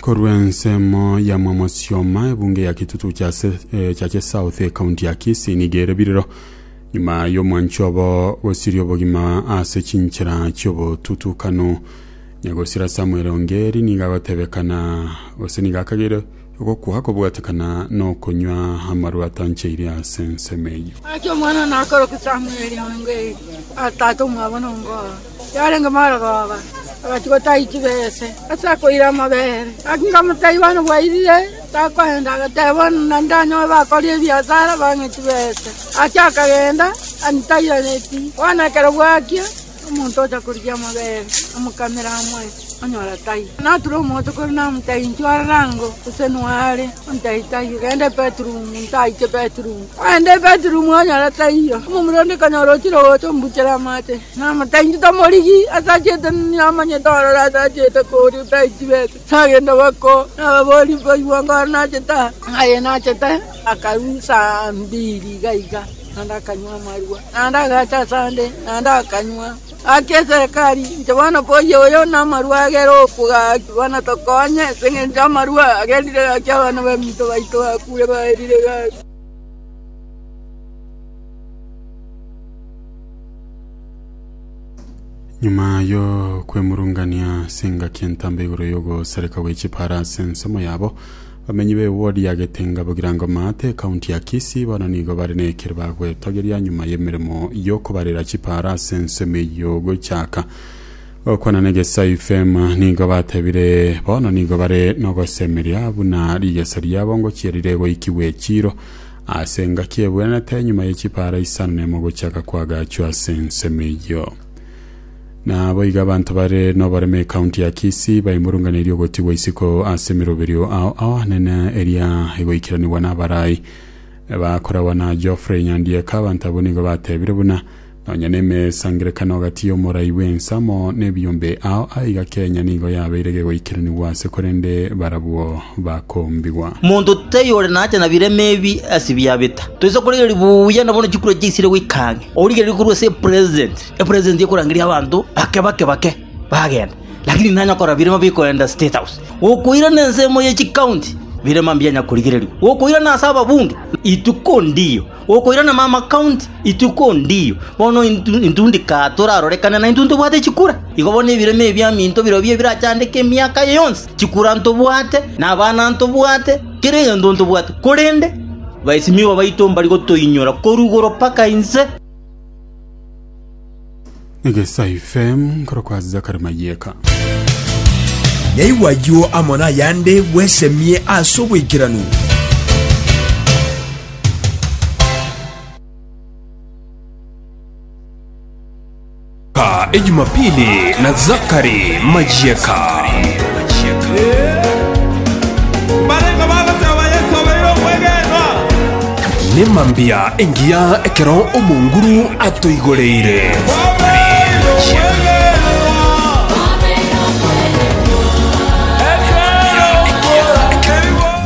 Korwa ensemo ya Mwamosioma, ebunge ya Kitutu Chase, eh, Chache South, ekaunti ya Kisii nigo ere biriro nyuma y'omwancho obo gosiria obogima ase chinchera chi'obotutukano. Negosira Samuel Ongeri niga agotebekana gose niga akagere ogokwa kobwatekana n'okonywa amarwa atancheire ase ensemo eyio. Acha omwana nakoroka Samueli onge atata omwabo nongo yarenge morogooba, agachia gotaa ituba aase ase akoira amabere. Gaki nkamotebia, Bono bwairire, takoenda. Agateba, Bono ndanyoe bakoria ebiasara, bang'e ituba aase. Gaki akagenda, antairanetie. Bono ekero bwakia, omonto ocha korigia amabere, amokamere amoe. Onyora tai nature omote kore namote ainchwe aroro ango, gose noe are ontai taiyo, genda ebedroom ntaiche bedroom. Kogenda ebedroom onyora taiyo, omomura onde kanyora ochire gocha ombuchere amache, namote ainchwe tamorigi ase achete namanyete ororo ase achete koria taiti bete. Tagenda bako nababori mbaigwa anga ore nachete aa, aye nachete akarwa saa mbiri iga iga naende akanywa amarwa, naende agacha ase ande naende akanywa. Gaki eserekari, inche bono mboyie oyo namarua agere okwo gaki, bono tokonye, ase engencho amarua agerire gaki abana baminto baito bakure baerire gaki. Nyuma y'okwemurungania ase engaki entambe igoro y'ogosareka gwe chipaara ase ensemo yabo, Bamenyi b'ewodi ya getenga Bugirango Maate, ekaunti ya Kisii, bono nigo bare nekero bagwetogeria nyuma y'emeremo y'okobarera chipaara ase ensemo eyio gochaka gokwana negesa FM nigo batebire bono nigo bare nogosemeria buna rigesa riabo ngochia riregoikigwa echiiro ase engaki ebwenerete nyuma yechipaara isano nemo gochaka kwagachwa ase ensemo eyio. Naboigo abanto bare noboremo ekaunti ya Kisii baimurunganeria ogotigwa isiko ase emiroberio ao abanene eria egoikeranigwa n'abarai bakoragwa na Geoffrey Nyandieka. Abanto abwo nigo batebire buna nonya nemesangerekano agati y'omorai bw'ensamo n'ebiyombe ao aiga Kenya nigo yabeire gegoikeranigwa ase korende barabwo bakombigwa. Monto tei ore nacha na birema ebi ase biabeta. Toise korigereria buya na bono chikura chiaisire goika ang'e. Origereria korwa ase president. Epresenti ekorangeria abanto bake bake bake bagenda, lakini nanya okora birema bikoenda State House, gokoirana ensemo ye chikaunti, birema mbianya korigererigwa, gokoirana ase ababunge, ituko ndiyo, gokoirana mama county, ituko ndiyo. Bono intu intu ndika torarorekane naintwe ntobwate chikura, igo bono ebirema ebiaminto birobio birachandeke emiaka eye yonsi, chikura ntobwate, na abana ntobwate, kera egento ntobwate, korende baisimiwa baito mbari gotoinyora korwa igoro mpaka inse. egesa ifm nkorokwa zakari mayeka Naigwa ayio amo nayande bwesemie ase oboikeranu. Ka Ejumapili na Zakari Majieka. Barenga bagoteba Yesu abeire omwegenwa. Nemambia engiya ekero omonguru atoigoreire.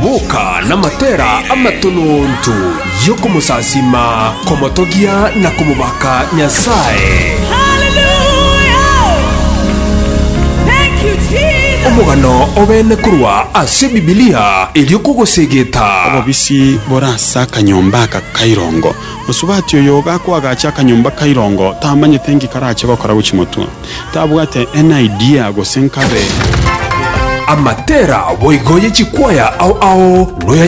Boka namatera amatononto y'okomosasima, komotogia na komobaka Nyasae. Omogano obene korwa ase Bibilia erio kogosegeta. Tibore ase akanyomba aka ka irongo. Mosubati oyo gakoagacha akanyomba ka irongo tamanyete nki karache gokora gochia motwe. Tabwate any idea gose nkabe. Amatera boigo ye chikwaya ao ao noyanyare.